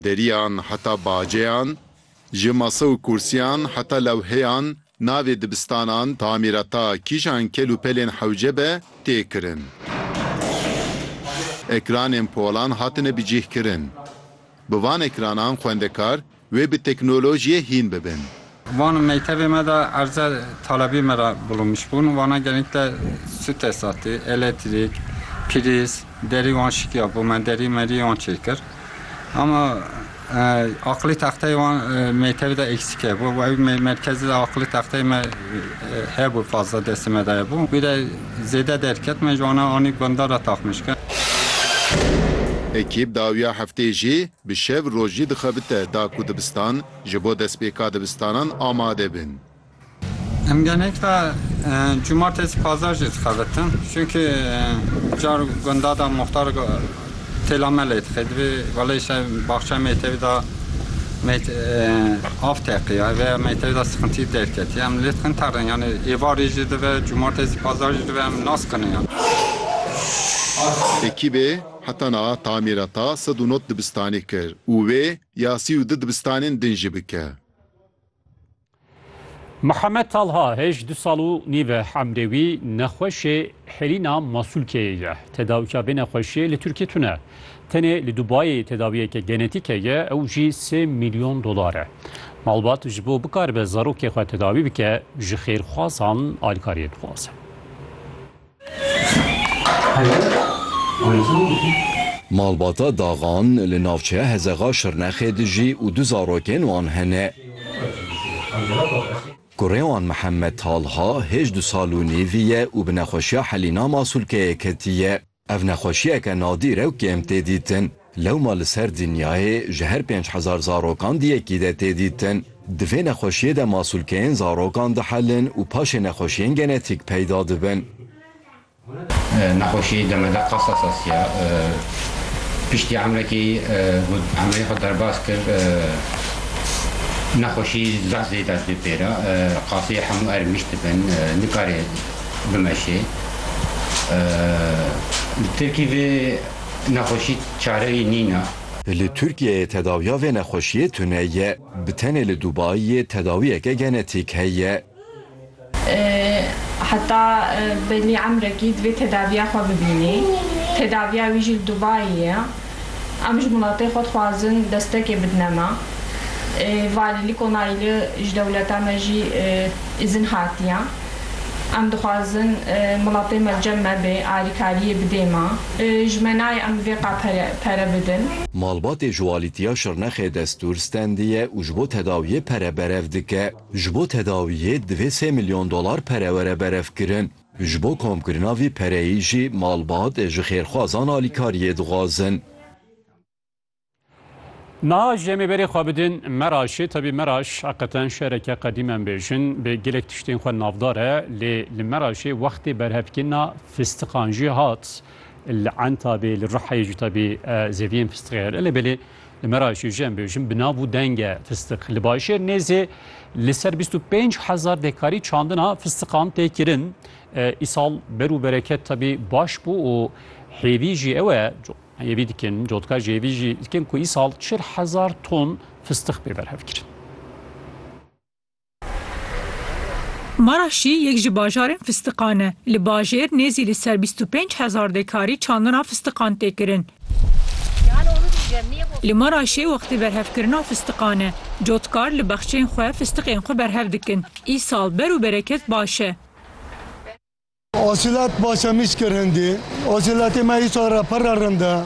Deriyan heta baceyan, ji masa û kûrsiyan heta lewheyan navê dibistanan, tamîrata kîjan kel û pelên hewce be tê kirin. Ekranên polan hatine bicîhkirin. Bi van ekranan xwendekar wê bi teknolojiyê hîn bibin. Van mektebê me de erze talebî me re bulunmiş bûn. Wana genîkle sû tesatî, elektrîk, prîz, derî wan şikiya bo me, derî merî wan çê kir. Ama aqilî texteyê wan mektebê de eksîk hebû. Ew merkezî de aqilî texteyê me hebû fazla destê me de hebû. Wî de zêde derket me ji wana anî bindar re taxmîş kir. Ekîb dawiya hefteyê jî bi şev rojî dixebite da ku dibistan Ji bo destpêka dibistanan amade bin. Em genekî cumartesî pazar jî dixebitin. Çunkî car gunda de muxtar têla me lê dixê. Divê wele îşev baxçeya mektebî de av teqiya vê ya mektebî de sixintî derketiye. Em lê dixin terin yanî êvarî jî dibe, cumartesî pazar jî dibe em nasiqinin yan. Ekîbê heta niha tamîreta sed û nod dibistanê kir û wê Ya sî û du dibistanên din jî bike. Mihemed Talha hêj du sal û nîv e emrê wî nexweşê hêlîna masûlkeyê ye. Tedawîya vê nexweşiyê li Tirkiyê tune. Tenê li Dubayê tedawiyeke genetîke ye ew jî sê mîlyon dolar e. Malbat ji bo bikaribe zarokê xwe tedawî bike ji xêrxwazan alîkariyê dixwaze. Malbata Daxan li navçeya Hezexa Şirnexê dijî û du zarokên wan hene. Kurê wan Mihemed Talha hêj du sal û nîvî ye û bi nexweşiya Helîna Masûlkeyê ketiye. Ev nexweşiyeke nadîr e û kêm tê dîtin. Lewma li ser dinyayê ji her pênc hezar zarokan di yekî de tê dîtin. Di vê nexweşiyê de masûlkeyên zarokan dihelin û paşê nexweşiyên genetîk peyda dibin. Nexweşiyê demede qasa sasiya piştî Emrekî got emrê xwe derbas kir. Nexweşî zeh zêde dibê pêra qaseyê hemû erê mişt dibin nikare bimeşê. Li Tirkî vê. Nexweşî çareyê nîne. Li Tirkiyeyê tedawiya vê nexweşiyê tune ye. Bi tenê li Dubaiyê tedawiyeke genetîk heye. Heta belî emrekî divê tedaviya xwe bibînî. Tedaviya wî jî li Dubaiyê ye. Em ji miletê xwe dixwazin destekê bidine me. Valîlik onayli ji dewleta me jî îzin hatiye. Em dixwazin welatê me cem nebe, alîkariyê bidê me. Ji me nayê em vê qal pere bidin. Malbatê ji Walîtiya Şirnexê destûr stendiye û ji bo tedawiyê pere berev dike. Ji bo tedawiyê divê sê milyon dolar pere were berevkirin. Ji bo komkirina vî pereyê jî malbat ji xêrxwazan alîkariyê dixwazin. Niha ji em ê berê xwe bidin Meraşê, tevî Meraş heqeten şereke qedîm em bêjin bê gelek tiştên xwe navdar e lê li Meraşê wextê berhevkirina fistiqan jî hat li Entabê li Rihayê jî tevî zeviyên fistiqê hene lê belê li Meraşê jî em bêjin bi nav û deng e fistiq. Li Başêr nêzê li ser bîst û pênc hezar dekarî çandina fistiqan tê kirin. Îsal ber û bereket tevî baş bû û hêvî jî ew e Hêvî dikin, cotka ji hêvî jî dikin ku îsal çil hezar ton fistix bê berhevkirin. Maraşî yek ji bajarên fistiqan e. Li bajêr nêzî li ser bîst û pênc hezar dekarî çandina fistiqan tê kirin. Li Maraşê wextê berhevkirina fistiqan e. Cotkar li bexçeyên xwe fistiqên xwe berhev dikin. Îsal ber û bereket baş e. Asilat başa mîş kir hindî. Asilatê me îsal re pir re rind e.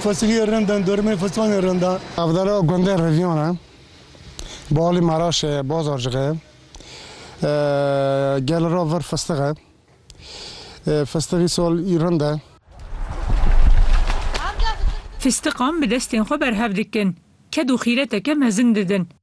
Fisiliyê rind in, dormên fistanê rind e. Navdera gundên Revîyan e. Balî Meraşê ye, Bazarcixê ye. Gel ra vir fistix e. Fistix îsal î rind e. Fistiqan bi destên xwe berhev dikin. Ked û xîreteke mezin didin.